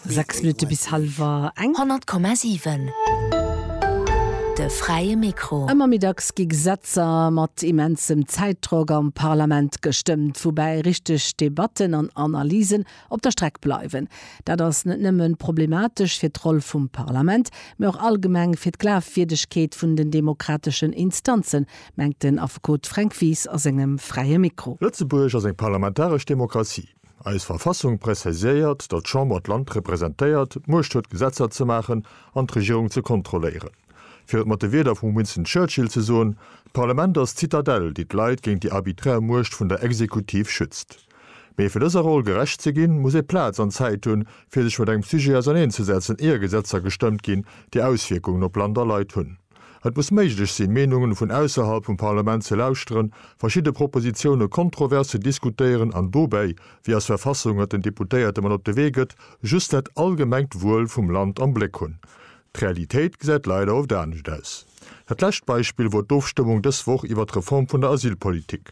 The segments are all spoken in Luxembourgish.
Sechs Minutte bis hallwer eng. 100,7 De fräie Mikro. Ëmmer méi dacks gi Gesetzer mat immensem Zäitdrock am Parlament gestëmmt, woubäi richteg Debatten an Analysen op der Streck bleiwen. Dat ass net nëmmen problematesch fir d'Roll vum Parlament, mee och allgemeng fir d'Glafwierdegkeet vun den demokrateschen Instanzen, mengt den Affekot Fränk Wies a sengem fräie Mikro. Lëtzebuerg ass eng parlamentaresch Demokratie. Eis Verfassung präzisiéiert, datt d'Chamber d'Land representéiert, d'Muecht huet Gesetzer ze maachen an d'Regierung ze kontrolléieren. Fir et mat de Wierder vum Winston Churchill ze soen, D'Parlament ass d'Zitadell, déi d'Leit géint déi arbiträr Muecht vun der Exekutiv schützt. Mee fir dëser Roll gerecht ze ginn, muss ee Plaz an Zäit hunn, fir sech mat engem Sujet auserneenzesetzen, ier Gesetzer gestëmmt ginn, déi Auswierkungen op Land a Leit hunn. Et muss méiglech sinn, Meenungen vun ausserhalb vum Parlament ze lauschteren, verschidde Propositiounen kontrovers ze diskutéieren an dobäi, wéi as Verfassung et den Deputéierte mat op de Wee gëtt, just dat allgemengt Wuel vum Land am Bléck hunn. D'Realitéit gesäit leider oft anescht aus. Dat lescht Beispill wor d'Ofstëmmung dës Woch iwwert d'Reform vun der Asylpolitik.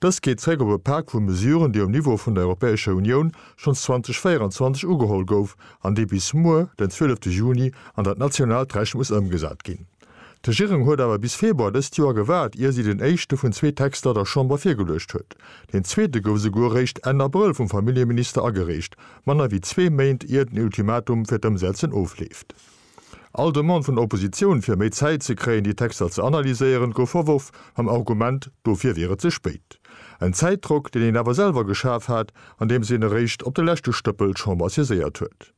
Dëst geet zréck op e Pak vu Mesuren, déi um Niveau vun der Europäescher Unioun schonns 2024 ugeholl gouf an dee bis muer, den 12 Juni, an dat nationaalt Recht muss ëmgesat ginn. D'Regierung huet awer bis Februar dëst Joer gewaart, ier si den éischte vun zwee Texter der Chamber virgeluecht huet. Deen zweete gouf esouguer eréischt Enn Abrëll vum Familljeminister agereecht, manner wéi zwee Méint ier den Ultimatum fir d'Ëmsetzen ofleeft. All Demande vun der Oppositioun, fir méi Zäit ze kréien, déi Texter ze analyséieren, gouf verworf, mam Argument, dofir wier et ze spéit. En Zäitdrock, deen een awer selwer geschaf hat, andeems een eréischt op de leschte Stëppel d'Chamber saiséiert huet.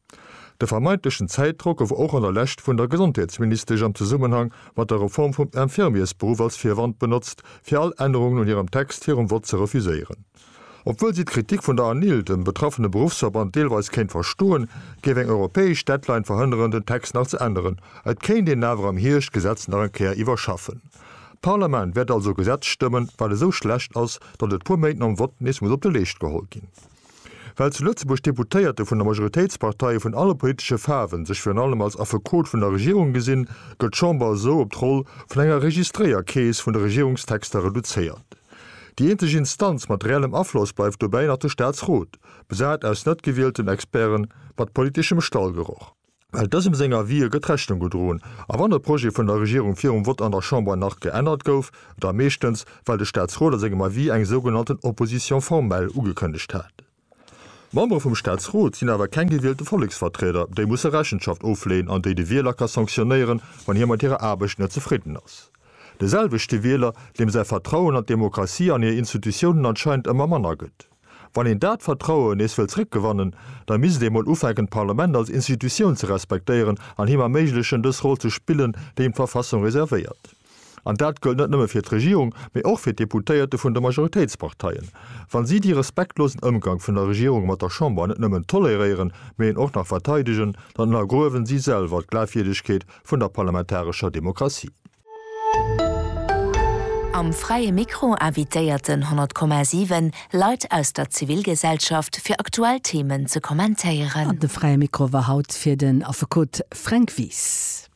De vermeintlechen Zäitdrock gouf och an der Lescht vun der Gesondheetsministesch am Zesummenhang mat der Reform vum Infirmiersberuff als Virwand benotzt, fir all Ännerungen un hirem Text virum Vott ze refuséieren. Obwuel si d'Kritik vun der ANIL, dem betraffene Beruffsverband, deelweis kéint verstoen, géif eng europäesch Deadline verhënneren, den Text nach ze änneren. Et kéint een awer am Hierscht d'Gesetz nach eng Kéier iwwerschaffen. D'Parlament wäert also e Gesetz stëmmen, wat esou schlecht ass, datt et puer Méint nom Vott nees muss op de Leescht geholl ginn. Well zu Lëtzebuerg d'Deputéierte vun de Majoritéitsparteie vun alle politesche Faarwen sech virun allem als Affekot vun der Regierung gesinn, gëtt d'Chamber esou op d'Roll vun enger Registréierkeess vun de Regierungstexter reduzéiert. Déi eenzeg Instanz mat reellem Afloss bleift dobäi nach de Staatsrot, besat aus net gewielten Experten mat politeschem Stallgeroch. Well dësem seng Avisë gëtt Rechnung gedroen, a wann e Projet vun der Regierung virum Vott an der Chamber nach geännert gouf, da meeschtens, well de Staatsrot a sengem Avis eng sougenannten Opposition formelle ugekënnegt hat. D'Membere vum Staatsrot sinn awer keng gewielte Volleksvertrieder, déi musse Rechenschaft ofleeën an déi de Wieler ka sanktionéieren, wann hie mat hirer Aarbecht net zefridden ass. De selwechte Wieler, deem säi Vertrauen an d'Demokratie an hir Institutiounen anscheinend ëmmer manner gëtt. Wann een dat Vertrauen nees wëll zréckgewannen, da misst ee mol ufänken d'Parlament als Institutioun ze respektéieren an him erméiglechen dës Roll ze spillen, déi him d'Verfassung reservéiert. An dat gëllt net nëmme fir d'Regierung, mee och fir d'Deputéierte vun de Majoritéitsparteien. Wa si dee respektlosen Ëmgank vun der Regierung mat der Chamber net nëmmen toleréieren, mee en och nach verteidegen, dann ënnergruewen si selwer d'Glaafwierdegkeet vun der parlamentarescher Demokratie. Am Fräie Mikro invitéierten 100,7 Leit aus der Zivilgesellschaft fir aktuell Themen ze kommentéieren. An de Fräie Mikro war haut fir den Affekot Fränk Wies.